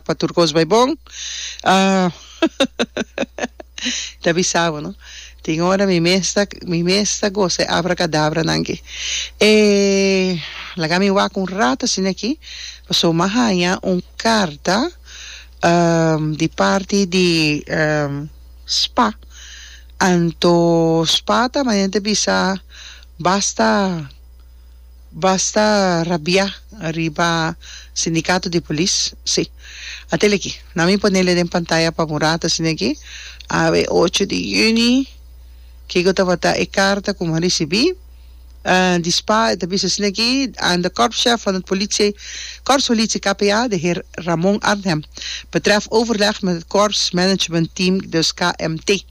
Pa tur cos bay bon. Ta bisabo no. Tin ora mi mes ta mi mes ta goza e abracadabra nan aki. E laga mi wak un rato asina aki paso mi a haya un carta di parti di spa anto spa ta manera ta bisa basta Basta rabiá riba sindikato di polis, sí. Atel aki, nan mi ponel e den pantaya pa murat asina aki, a e ocho di juni, kiko tabata e karta ku mi a risibí, di spa e ta bisa asina aki, aan de korpschef van het politie, korpspolitie KPA, de heer Ramon Arnhem, betreft overleg met het korps management team, dus KMT.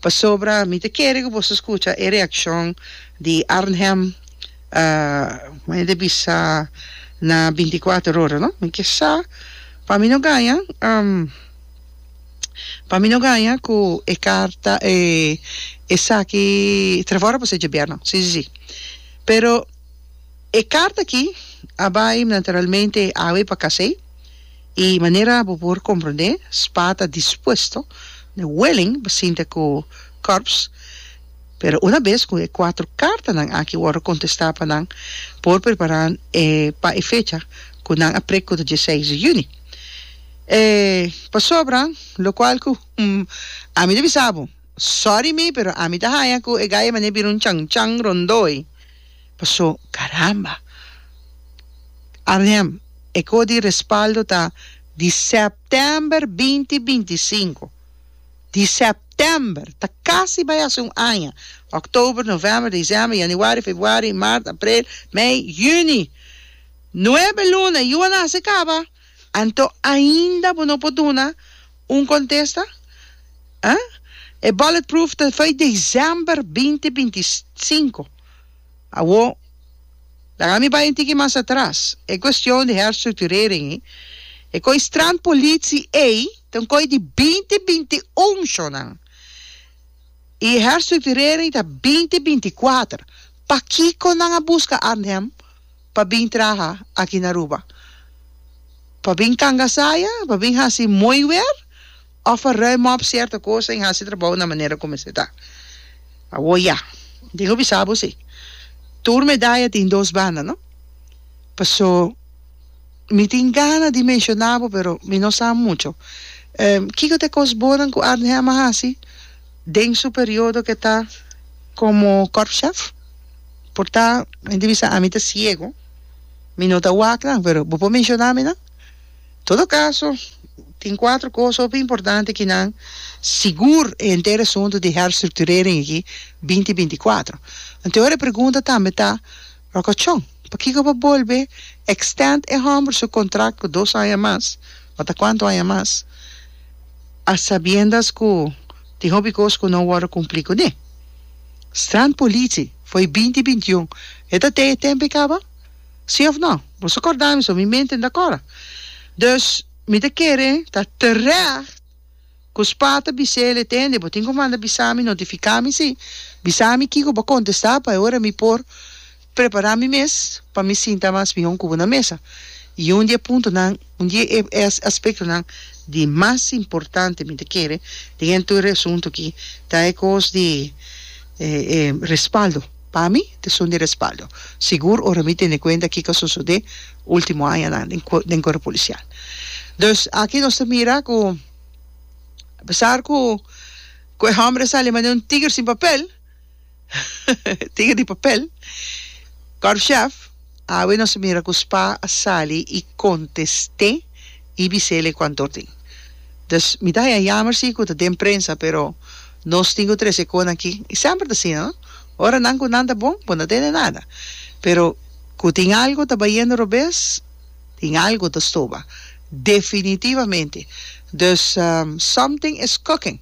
Pasobra mi ta kere ku boso skucha e reakshon di Arnhem, maya ta bisa na binti kuater ora, no? Mi ke sa, pa mi no gaña, pa mi no gaña ku e karta, e esaki tra fora por ser djobièrnu, si, si, si. Pero e karta aki a bai naturalmente awe pa Kasey. I manera bo por komprondé, Spa ta dispuesto ne wèling pa sinta ku Korps, pero una bes ku e kuater kartanan aki wòrdu kontestá pa nan por prepará e pa e fecha ku nan a prek ku ta die seis di yüni. E pasobra lokual ku ami ta bisa bo, sòri mi pero ami ta haña ku e gaya manera bira un chan chan rondó ei. Paso, caramba! Arnhem, e coho di respaldo ta di september binti binti sinku. Di september! Ta casi bay haci un aña. October, november, december, januari, februari, maart, april, mei, juni! Nuebe luna y yo a na haci caba! Anto ainda bo no por duna un contesta? Huh? E bulletproof ta fai december binti binti sinku. Awo, laga mi bai un tiki mas atras. E cuestion di herstructurering ei, e koi strand politie ei ta un koi di binti binti unchonan. I e herstructurering ta binti binti kuater. Pakiko nan a busca Arnhem pa bin traha aki na Aruba? Pa bin kanga saya? Pa bin hasi mooi weer? Of pa ruim op cierto cosa en hasi trabao na manera cu mester ta? Awo ya. Den hopi sa bo si. Tur medaya tin dos banda, no? Paso mi tin gana di menciona bo pero mi no sa mucho. Kico ta e cos bonan cu Arnhem a hasi den su periodo ke ta como Korpschef? Por ta gen ta bisa ami ta ciego mi no ta wak nan pero bo por menciona mi nan todo caso tin cuatro cosa hopi importante ki nan sigur e henter asunto di herf structurering aki binti binti cuatro enton ora e pregunta tambe ta rocachon pakico bo bolbe extend e homber su contract cu dos aña mas o ta cuanto aña mas a sabiendas cu tin hopi cos cu no worde cumpli cune. Strand Politie, foi binti binti un. E ta te e tempo e kaba? Si of no? Boso korda mi so mi mente no ta kora. Dus, mi ta kere ta terecht ku spa ta bis'é el, e tende, bo tin ku manda bisami, notifikami si, bisami kiko bo kontestá pa e ora mi por. prepará mi mes pa mi sinta mas mihó ku bo na mesa. I un di e puntonan, un di e aspektonan di mas importante mi ta kere den e tur e asuntu akí ta e kos di e respaldo. Pa mi ta esun di respaldo. Sigur ora mi tene kuenta kiko a sosodé último añanan den den Kuerpo Polisial. Dus aki nos ta mira ku apesar ku ku e hòmber a sali mas den un tiger sin papel, Tiga di papel. Korpschef, Awe nos a mira ku Spa a sali i kontest'é i bis'é le kuantu tin. Dus mi ta haña yamer si ku ta den prensa pero nos tin ku trese konan aki. I semper ta asina no. Ora nan ku nan ta bon bo no tene nada. Pero ku tin algu ta bayendo robes tin algu ta stoba. Definitivamente. Dus something is cooking.